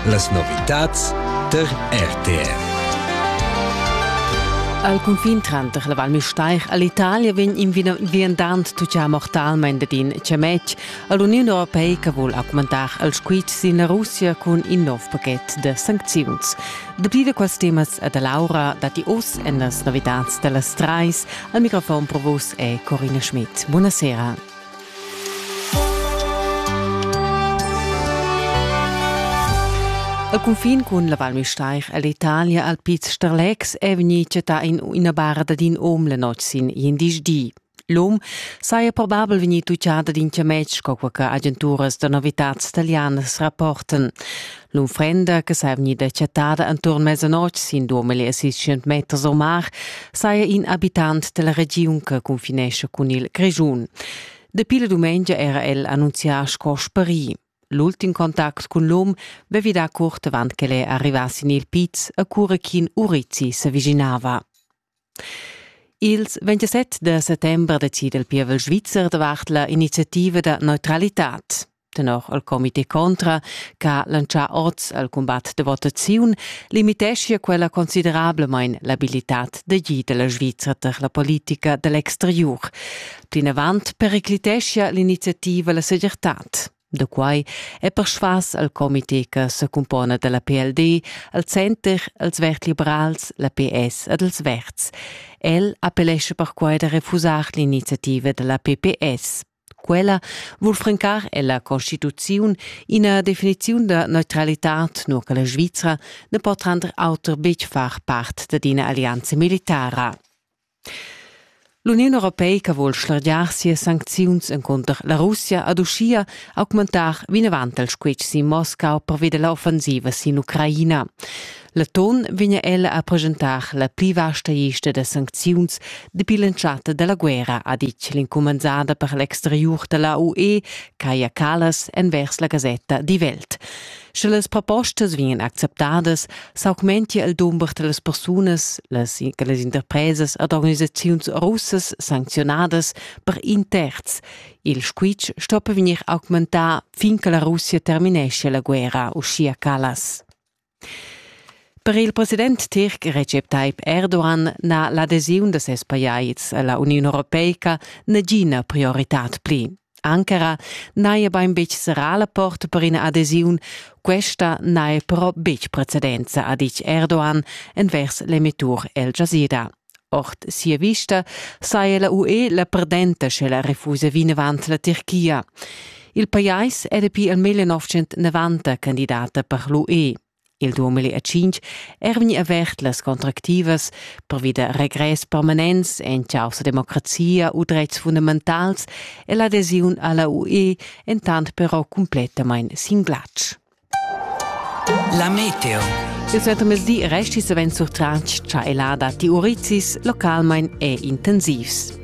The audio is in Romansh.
Las novitads tar RTR. Al cunfin tranter la Val Müstair e l'Italia vegn in viandant tuccà mortalmain dad in chametg. L'Uniun Europeica vul augmentar il squitsch sin la Russia cun in nov pachet da sancziuns. Dapi da quels temas e da Laura datti oz en las novitads da las trais. Al microfon provos è Corina Schmidt. Buonasera. A cunfin cun la Val Müstair ell'Italia al Piz Starlex è vegnì chattà in ina bara dad in om la notg sin indisch di. L'om saja probabel vegnì tuccada d'in chametg, co che agenturas da novitads talianas rapportan. L'unfrenda che saja vegnida chattada enturn mezzanotg sin duamilli e seiscent meters o mar saja in abitant della regiun che confinesce cun il Grischun. Dapi la dumengia era el annunzià sco sparì. L'ultim contact cun l'um vevi da curt avant che el è arrivà sin il piz a cura ch'in urizzi se viginava. Ils 27 da settember decida il pievel svizzer davart la iniziativa da neutralitad. Tenor il comité contra, che ha lancià oz al cumbat da votaziun, limiteschia quella considerablamain l'abilitad d'agir della Svizra per la politica dell'exteriur. Plinavant pericliteschia l'iniziativa la segirtad. Da quai è persvas al comité che secumpona da la PLD al Center als vertebrals, la PS ed els verds. El appellescha perquai da refusar l'iniziativa da la PPS. Quella vul francar ella Constituziun ina definiziun da neutralitad, nur che la Svizra ne pot render auter betg far part d'ina alleanza militara. L'Uniun europeica vul schlargiar sias sancziuns encunter la Russia ad uschia augmentar vinavant il squitsch sin Moscau pervi da l'offensiva sin Ucraina. Leton vegnia ella a presentar la pli vasta lista da sancziuns dapi l'entschatta da la guerra, ha ditg l'incumanzada per l'exteriur da la UE, Kaja Kallas, envers la gasetta Die Welt. Sche las propostas vegnan acceptadas, s'augmentia il dumber da las persunas, las, las interpresas ed organisaziuns russas sancziunadas per in terz. Il squitsch sto per vegnir augmentà fin che la Russia termineschia la guerra, uschia Callas. Per il president tirc Recep Tayyip Erdogan n'ha l'adesiun da ses pajais a la Uniun Europeica nagina prioritad pli. Ankara n'haja bain betg serrà la porta per ina adesiun, questa n'haja però betg precedenza, ha ditg Erdogan envers l'emettur El Jazeera. Ord sia vista saja la UE la perdenta, sche la refusa vinavant la Tirchia. Il pajais è dapi il 1990 candidata per l'UE. Il 2005 è er vegnì avert las contractivas pervi da regress permanents en chaussa democrazia u dretgs fundamentals e l'adesiun a la UE entant però cumplettamain sin glatsch. La meteo. Il suentermezdi resti savens surtratg cha elada ti urizis localmain è intensivs.